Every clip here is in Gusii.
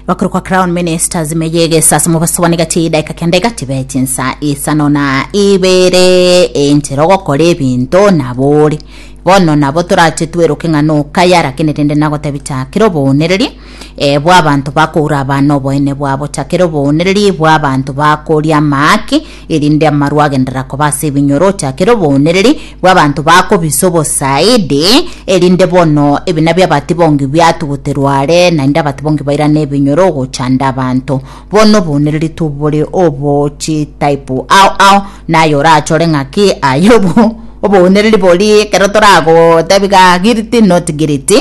bakuru kwa crown ministers meyegesa ase mobaso bane gati edaika kende gati beti nsa isano na ibere enchera ogokora ebinto nabore bono nabo torache tweroke ng'a nokaya lakini rende nagotebi chakera oboonereri eh, bw'abanto bakoura abana oboene bwabo chakera oboonereri bw'abanto bakoria amaaki erinde amaru agenderera koba ase ebinyoro ochakere obooniriri bw'abanto bakobisa obosaidi, erinde bono ebina bi'abatibongi biatuguterwe are, naende abatibongi bairane ebinyoro ogochanda abanto. Bono obooniriri tobore obo chitaipu ao ao, na aye orachore ng'aki aye obo obooniriri boria ekero toragotebi ga guilty not guilty.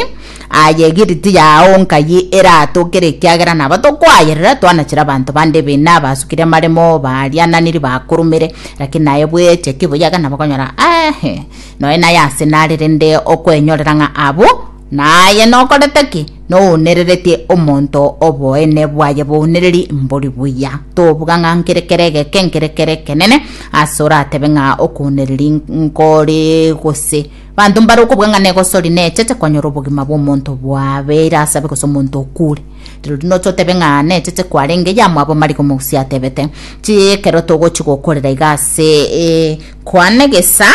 Aye egiriti yao nkayi eratokere ekiagera nabo tokoayerera twanachire abanto bande ebina basukire amaremo bariananiri bakorumire lakini naye bweche kibuyaga nabo konyora ahe noe naye ase nare rende okwenyorera ng'a abo naye nokorete ki nounereretie omonto oboene bwaye bounereri mbori buya tobuga ng'a nkere kere egeke nkere kere ekenene ase oratebe ng'a okounereri nkore gose Banto mbare okobua ng'a negosori nechete konyora obogima bw'omonto bwabe ere asabe gose omonto okure. Rirorio noche otebe ng'a nechete kwarenge yamwabo Marigo Mogusia atebete, Chi ekero togochi gokorera iga ase kwane gesa.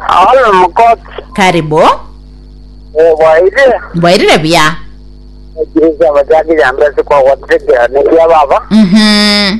Aono mokoti. Karibu. Eh, bwairire? Mbwairire buya. Ekirisia abachakiri ambe ase kwagotegerera nekiababa. Mhm.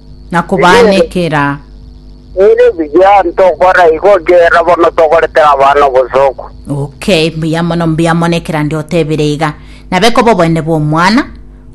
na kobaanekera. Ere buya ntokora igo ekiagera bono tokorete abana obosooku. Okay, mbuya mono, mbuya mono ekerande otebire iga. Nabe koba obonene bw'omwana,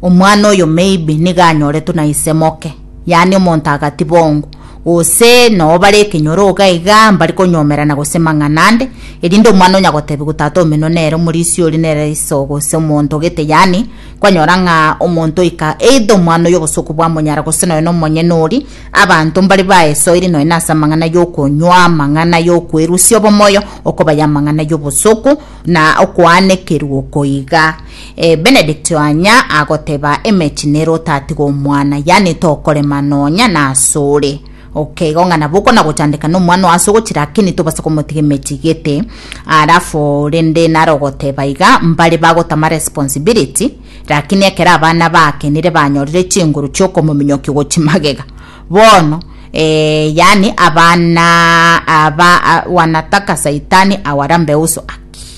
omwana oyo maybe niga anyoretwe na ise moke, yaani omonto agati bongo, gose noo bare ekenyoro iga iga mbari konyomerana gose mang'ana ande, erinde omwana onya gotebiwa tata omino nere omorisia oria nere iso gose omonto gete yaani Kwanyora ng'a omonto oika, eidha omwana oy'obosooku bwa monyara gose nonya nomonyene oria, abanto mbare baesoire nonya nase amang'ana y'okonywa, amang'ana y'okwerusia obomoyo, okobaya amang'ana y'obosooku, na okoanekerwa oko iga. Eh, Benedict anya agoteba, Emechie nere otatige omwana, yaani tokorema nonya nasore. Okay, igo ng'ana boko na gochandeka na omwana oase ogochira akini tobase komotiga emeti gete alafu rende naro ogoteba iga mbare bagotama responsibility lakini ekero abana bakenire banyorire chinguru chiokomominyokia gochi magega bono eh, yani abana aba a, wanataka saitani awarambe uso